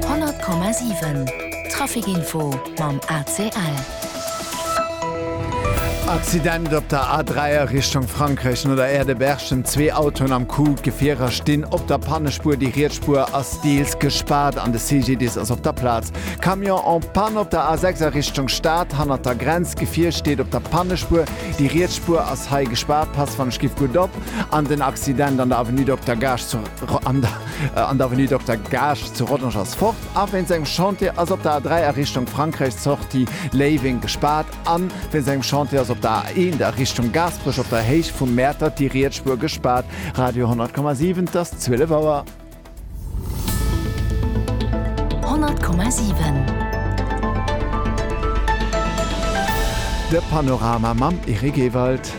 100,7 Trafic-Info mam ACL. Accident op der A3 a Richtung Frankräich, no der Aire de Berchem zwee Autoen am Coup. D'Gefierer stinn op der Pannespuer, déi riets Spuer ass deels gespaart an de CGDIS ass op der Plaz. Camion en panne op der A6 a Richtung Stad, hannert der Grenz. D'Gefier steet op der Pannespuer, déi riets Spuer ass hei gespaart. Passt wann ech giff gutt op an den Accident an der Avenue Dokter Gaasch. an der Avenue Dokter Gaasch zu Rodange ass fort a wéinst engem Chantier ass op der A3 a Richtung Frankräich d'Sortie Léiweng gespaart a wéinst engem Chantier ass op der A1 a Richtung Gaasperech op der Héicht vum Mäertert déi riets Spuer gespaart. Radio 10,7 't ass 12 Auer. 100,7. De Panorama mam Eric Ewald.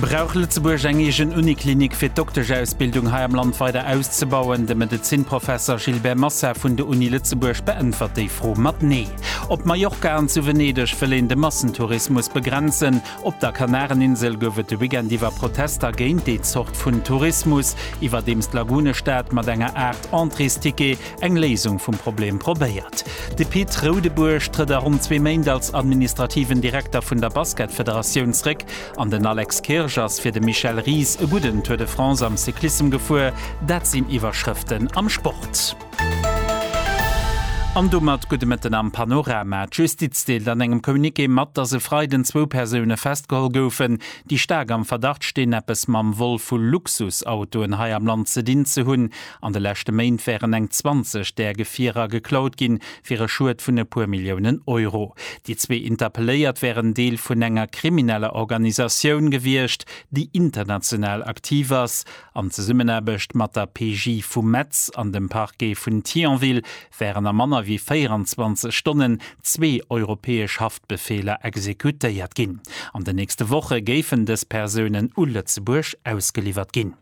Brauch Lëtzebuerg eng eegen Uniklinik fir d'Dokteschsausbildung hei am Land weider auszebauen? De Medezinprofesser Gilbert Massa vun der Uni Lëtzebuerg beäntwert déi Fro mat Nee. Op Mallorca an zu Venedeg wëll een de Massentourismus begrenzen. Op der Kanareninsel gouf et de Weekend iwwer Protester géint déi Zort vun Tourismus. Iwwerdeems d'Lagunestad mat enger Aart Entréesticket eng Léisung vum Problem probéiert. De Pit Roudebuerg trëtt a ronn zwee Méint als administrativen Direkter vun der Basketfederatioun zréck an den Alex Kirsch ass fir de Michel Ries e gudden Tour de France am Cyclissem gefuer. Dat sinn Iwwerschrëften am Sport. An domat gudde Mëtten am Panorama. D'Justiz deelt an engem Communiqué mat, datt e Freiden zwou Persoune festgeholl goufen, déi staark am Verdacht stinn, eppes mam Vol vu Luxusautoen hei am Land ze dinn ze hunn. An de leschte Méint wären eng 20 där Gefierer geklaut ginn, fir e Schued vun e puer Milliounen Euro. Déi zwee Interpelléiert wären Deel vun enger krimineller Organisatioun gewiescht, déi international aktiv ass. An Zesummenaarbecht mat der PJ vu Metz an dem Parquet vun Thionville wären a manner wéi 24 Stonnen zwee europäesch Haftbefeeler exekutéiert ginn. An den nächste Woche géifen dës Persounen u Lëtzebuerg ausgeliwwert ginn.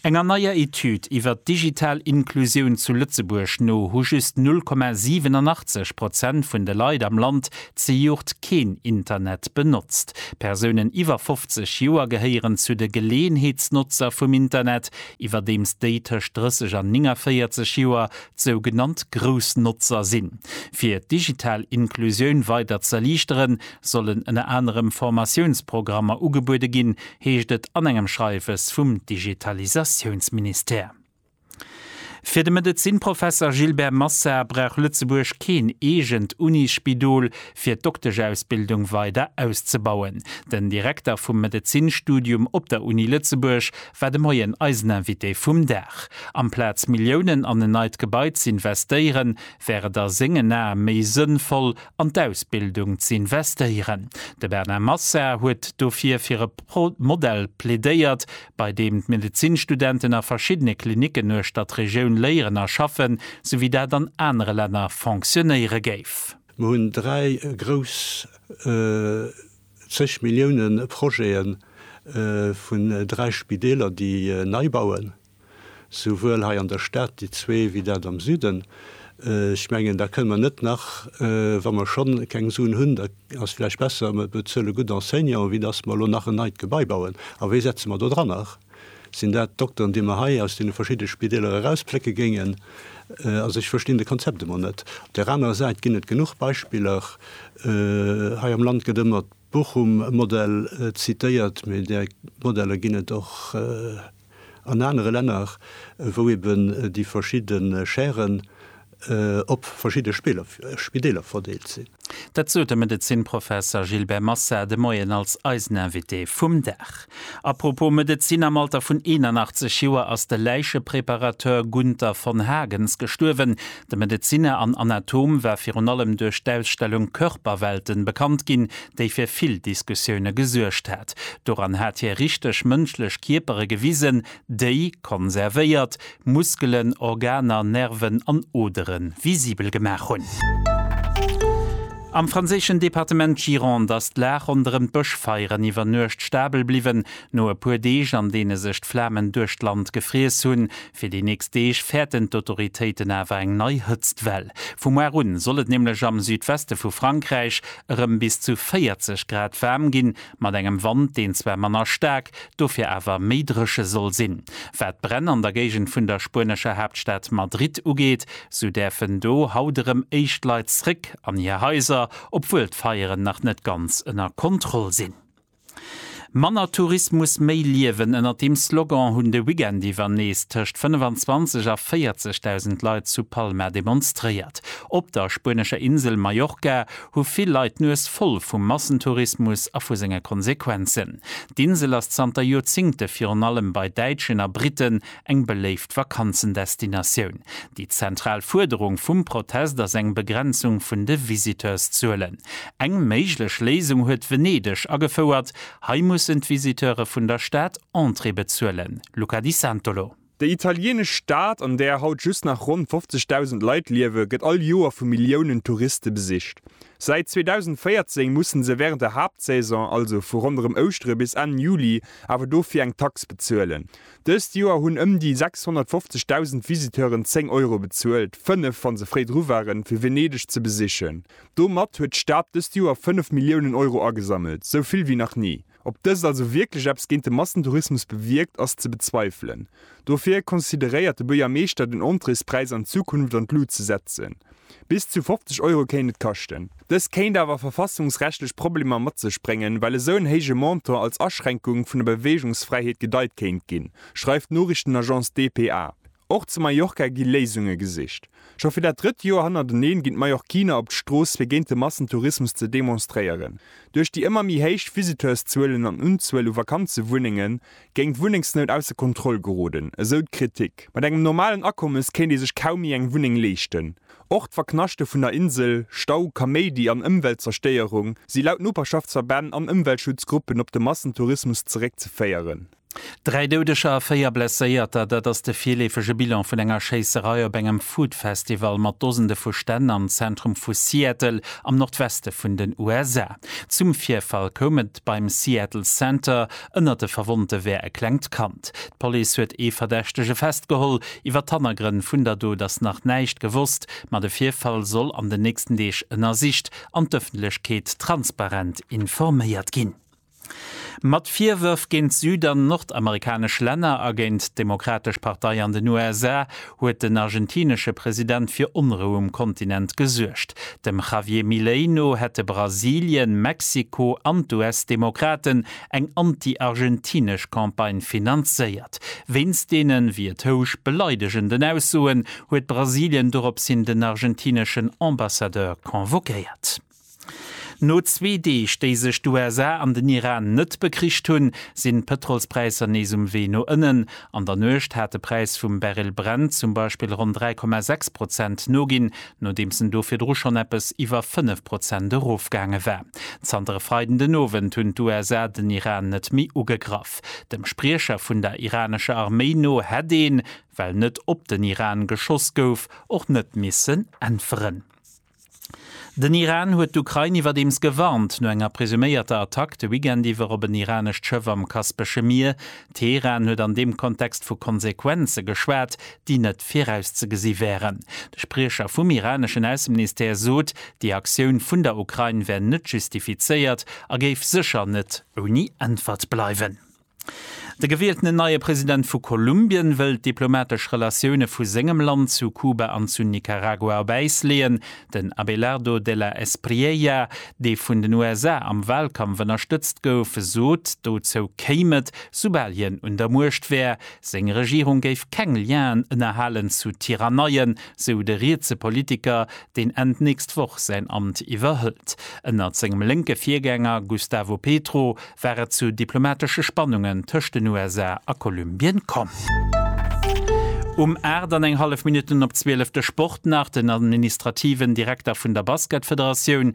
Enger neier Etüd iwwer d'digital Inklusioun zu Lëtzebuerg no hu just 0,87 Prozent vun de Leit am Land zejoert keen Internet benotzt. Persounen iwwer 50 Joer gehéieren zu de Geleeënheetsnotzer vum Internet, iwwerdeems déi tëscht 30 an 49 Joer d'sougenannt grouss Notzer sinn. Fir d'digital Inklusioun weider z'erliichteren, sollen ënner anerem Formatiounsprogrammer ugebuede ginn, heescht et an engem Schreiwes vum Digitalisatiounsministère. Fir de Medezinnprofesser Gilbert Massa brauch Lëtzebuerg keen eegent Unisspidol, fir d'Dokteschsausbildung weider auszebauen. Den Direkter vum Medezinnstudium op der Uni Lëtzebuerg war de Moien eisen Invité vum Dag. Amplaz Milliounen an en neit Gebai z'investéieren, wär et a sengen Ae méi sënnvoll, an d'Ausbildung ze investéieren. De Bernard Massa huet dofir fir e Modell plädéiert, bei deem d'Medezinstudenten a verschiddene Klinicken uechter d'Regioun léieren a schaffen, sou wéi dat an anere Länner fonctionnéiere géif. Mir hunn dräi grouss zeg Millioune Projete vun dräi Spideeler, déi nei bauen. souwuel hei an der Stad, déi zwee, wéi dat am Süden. Ech mengen, da kënne mer net nach, wa mer schonn keng Suen hunn, da ass vläicht besser, mer bezuele gutt Enseignanten, wéi datt mer elo nach en neit Gebai bauen. A wie setze mer do dran? Nach sinn dat d'Dokteren, déi mer hei aus deene verschiddene Spideeler erausplécke géingen. Also ech verstinn de Konzept emol net. Op där anerer Säit ginn et genuch Beispiller. Hei am Land gëtt ëmmer. Bochum e Modell zitéiert, mee där Modeller ginn et och an anere Länner, wou eben déi verschidde Schären op verschidde Spideeler verdeelt sinn. Dat sot de Medezinnprofesser Gilbert Massard de Moien als eisen Invité vum Dag. Apropos Medezin, am Alter vun 81 Joer ass de Läichepreparateur Gunther von Hagens gestuerwen. De Medezinner an Anatom war virun allem duerch d'Ausstellung Körperwelten bekannt ginn, déi fir vill Diskussioune gesuergt hat. Doran hat hie richteg mënschlech Kierpere gewisen, Déi konservéiert Muskelen, Organer, Nerven an Odere visibel gemaach hunn. Am franséischen Departement Gironde ass d'Lag ronderëm d'Bëschfeieren iwwer Nuecht stabel bliwwen. No e puer Deeg, an deene sech d'Flamen duerch d'Land gefriess hunn, fir déi nächst Deeg fäerten d'Autoritéiten awer eng nei Hëtztwell. Vu muar un soll et nämlech am Südweste vu Frankräich erëm bis zu 40 Grad waarm ginn. mat engem Wand, deen zwar manner staark, dofir awer méi dréche soll sinn. Wat d'Bränn an der Géigend vun der spuenescher Haaptstad Madrid ugeet, sou däerfen do haut erëm éischt Leit zréck an hir Haiser, obwuel d'Feieren nach net ganz ënner Kontroll sinn. Manner Tourismus, méi Liewen, ënnert deem Slogan hunn de Weekend iwwer nees tëscht 25 a 40.000 Leit zu Palma demonstréiert. Op der spuenescher Insel Mallorca hu vill Leit d'Nues voll vum Massentourismus a vu senge Konsequenzen. D'Insel ass zanter Joerzingte virun allem bei Däitschen a Britten eng beléift Vakanzendestinatioun. Déi zentral Fuerderung vum Protest ass eng Begrenzung vun de Visiteurszuelen. Eng méiglech Léisung huet Venedeg agefouert, hei mussen d'Visiteure vun der Stad Entrée bezuelen. Luca Di Santolo. Déi italieenesch Stad, an där haut just nach ronn 50.000 Leit liewen, gëtt all Joer vu Milliounen Touriste besicht. Säit 2014 musse se wärend der Haaptsaison, also vu ronderëm Ouschtere bis Enn Juli, awer dofir eng Tax bezuelen. Dëst Joer hunn ëm déi 650.000 Visiteuren 10 Euro bezuelt, fënnef, wa se fréi dru waren, fir Venedeg ze besichen. Domat huet d'Stad dëst Joer fënnef Milliounen Euro agesammelt, sou vill wéi nach ni. Ob dëst also wierklech eppes géint de Massentourismus bewierkt, ass ze bezweifelen. Dofir consideréiert de Buergermeeschter den Entréespräis an Zukunft an d'Lut ze setzen. Bis zu 50 Euro kéint et kaschten. Dëst kéint awer verfassungsrechtlech Problemer mat sech bréngen, well esou en héije Montant als Aschränkung vun der Beweegungsfräiheet gedeit kéint ginn, schreift d'Noriichtenagence dpa. Och zu Mallorca gi Léisunge gesicht. Scho fir dat drëtt Joer hannerteneen ginn d'Mallorquiner op d'Strooss fir géint de Massentourismus ze demonstréieren. Duerch déi ëmmer méi héich Visiteurszuelen an Unzuel u Vakanzewunnenge géing d'Wunnengsnout ausser Kontroll geroden, esou d'Kritik. Mat engem normalen Akommes kéint ee sech kaum méi eng Wunneng leeschten. Och d'Verknaschte vun der Insel, Stau, Kaméidi an Ëmweltzerstéierung si laut Noperschaftsverbänn an Ëmweltschutzgruppen op de Massentourismus zeréckzeféieren. Dräi Doudeger a véier Blesséierter, dat ass de virleefege Bilan vun enger Schéisserei op engem Food-Festival mat Dosende vu Stänn am Zentrum vu Seattle am Nordweste vun den USA. Zum Virfall koum et beim Seattle Center. Ënnert de Verwonnte wär e klengt Kand. D'Police huet ee Verdächtege festgeholl. Iwwer d'Hannergrënn vun der Dot ass nach näischt gewosst, ma de Virfall soll an den nächsten Deeg ënnersicht an d'Ëffentlechkeet transparent informéiert ginn. Mat Virwërf géint süd an nordamerikanesch Länner a géint d'Demokratesch Partei an den USA huet den argentinesche President fir Onrou um Kontinent gesuergt. Dem Javier Milei no hätte Brasilien, Mexiko an d'US-Demokraten eng anti-argentinesch Campagne finanzéiert. Wéinst deenen, wéi et housch, beleidegenden Aussoen huet Brasilien doropshin den argentineschen Ambassadeur convoquéiert. No zwee Deeg, déi sech d'USA an den Iran net bekricht hunn, sinn d'Pëtrolspräisser nees um Wee no ënnen. An der Nuecht hat de Präis vum Barrel Brent zum Beispill ronn 3,6 Prozent noginn, nodeems en do virdru schonn eppes iwwer 5 Prozent erofgaange war. Zanter e Freiden den Owend hunn d'USA den Iran net méi ugegraff. Dem Spriecher vun der iranescher Arméi no hätt een, well net op den Iran geschoss gouf, och net missen äntweren. Den Iran huet d'Ukrain iwwerdeems gewarnt, no enger presuméierter Attack de Weekend iwwer op en iranescht Schëff am Kaspesche Mier. Teheran huet an deem Kontext vu Konsequenze geschwat, déi net virauszegesi wären. De Spriecher vum iraneschen Ausseministère sot, déi Aktioun vun der Ukrain wär net justifizéiert a géif sécher net ouni Äntwert bleiwen. De gewieltenen neie President vu Kolumbien wëll d'diplomatesch Relatioune vu sengem Land zu Kuba an zu Nicaragua op Äis leeën. Den Abelardo de la Espriella, dee vun den USA am Walkampf ënnerstëtzt gouf, sot, dozou kéim et, soubal hien un der Muecht wär. Seng Regierung géif keng Lienen ënnerhalen zu Tiranneien, sou de rietse Politiker, deen Enn d'nächst Woch säin Amt iwwerhëlt. Ënnert sengem lénke Virgänger Gustavo Petro war et zu diplomatesche Spannungen tëscht den USA a Kolumbien komm. Um 8 an eng hallef Minutten op 12 de Sport nach, den administrativen Direkter vun der Basketfederatioun,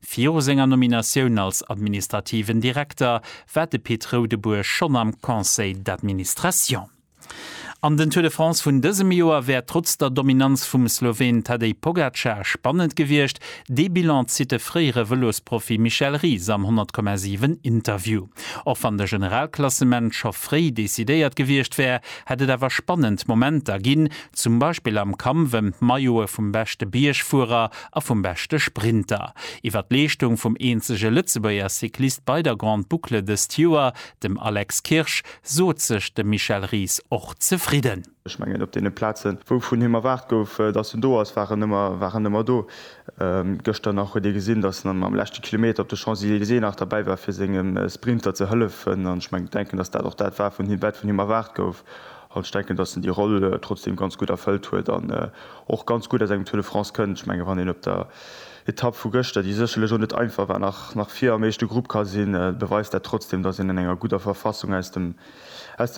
Viru senger Nominatioun als administrativen Direkter war de Pit Roudebuesch schonn am Conseil d'administration. An den Tour de France vun dësem Joer wär trotz der Dominanz vum Sloween Tadej Pogacar spannend gewiescht. Dee Bilan zitt de fréiere Vëlosprofi Michel Ries am 100,7 Interview. Och wann de Generalklassement scho fréi decidéiert gewiescht wär, hätt et awer spannend Momenter ginn, zum Beispill am Kampf ëm d'Maillote vum beschte Biergfuerer a vum beschte Sprinter. Iwwer d'Leeschtung vum eenzege Lëtzebuerger Cyclist bei der Grande Boucle dëst Joer, dem Alex Kirsch, sot sech de Michel Ries och zefridden. Ech mengen, op deene Plazen, wou vun him erwaart gouf, datt en do ass, war en ëmmer, war en ëmmer do. Gëschter nach huet ee gesinn, datt en am leschte Kilometer op de Champs-Elysées nach derbäi war, fir sengem Sprinter ze hëllefen. An ech mengen, denken, datt dat och dat war, wat vun him erwaart gouf. An ech denken, dass en déi Roll trotzdeem ganz gutt erfëllt huet an och ganz gutt aus engem Tour de France kënnt. Ech mengen, wann een op der Etapp vu gëschter, déi sécherlech och net einfach war, nach vir am éischte Grupp ka sinn, beweist dat trotzdeem, dass een an enger gudder Verfassung aus dem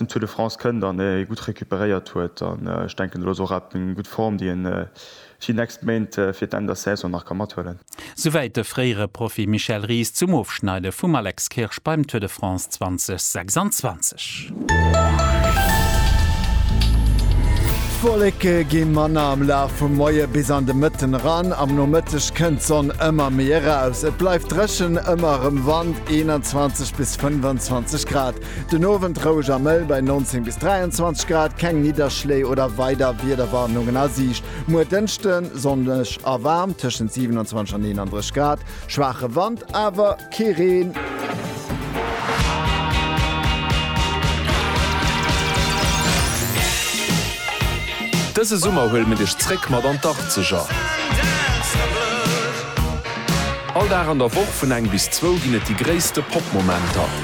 Tour de France kënnt an ee gutt recuperéiert huet. An ech denken, elo ass och eng gutt Form, déi en Si nächst Méint fir d'Enn der Saison nach ka mathuelen. Souwäit de fréiere Profi Michel Ries zum Ofschneide vum Alex Kirsch beim Tour de France 2026. D'Wolleke gi manner am Laf vum Moie bis an de Mëtten eran. Am Nomëtteg kënnt d'Sonn ëmmer méi eraus. Et bleift dréchen, ëmmer erëm Wand, 21 bis 25 Grad. Den Owend roueg a mëll bei 19 bis 23 Grad, keng Nidderschléi oder weider Wiederwarnungen a Siicht. Muer Dënschde sonneg a waarm, tëschent 27 an 31 Grad, schwaache Wand, awer kee Reen. Dëse Summer huele mir dech zréck mat an d'Achtzeger. All Dag an der Woch vun eng bis zwou ginn et déi gréisste Pop-Momenter.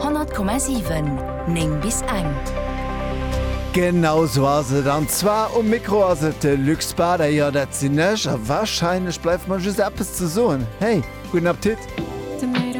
100,7 9 bis eng. Genau sou ass et, an zwar um Mikro ass et de Luc Spader, jo dat sinn ech, a wahrscheinlech bleift mer just eppes ze soen, hey, gudden Appetit!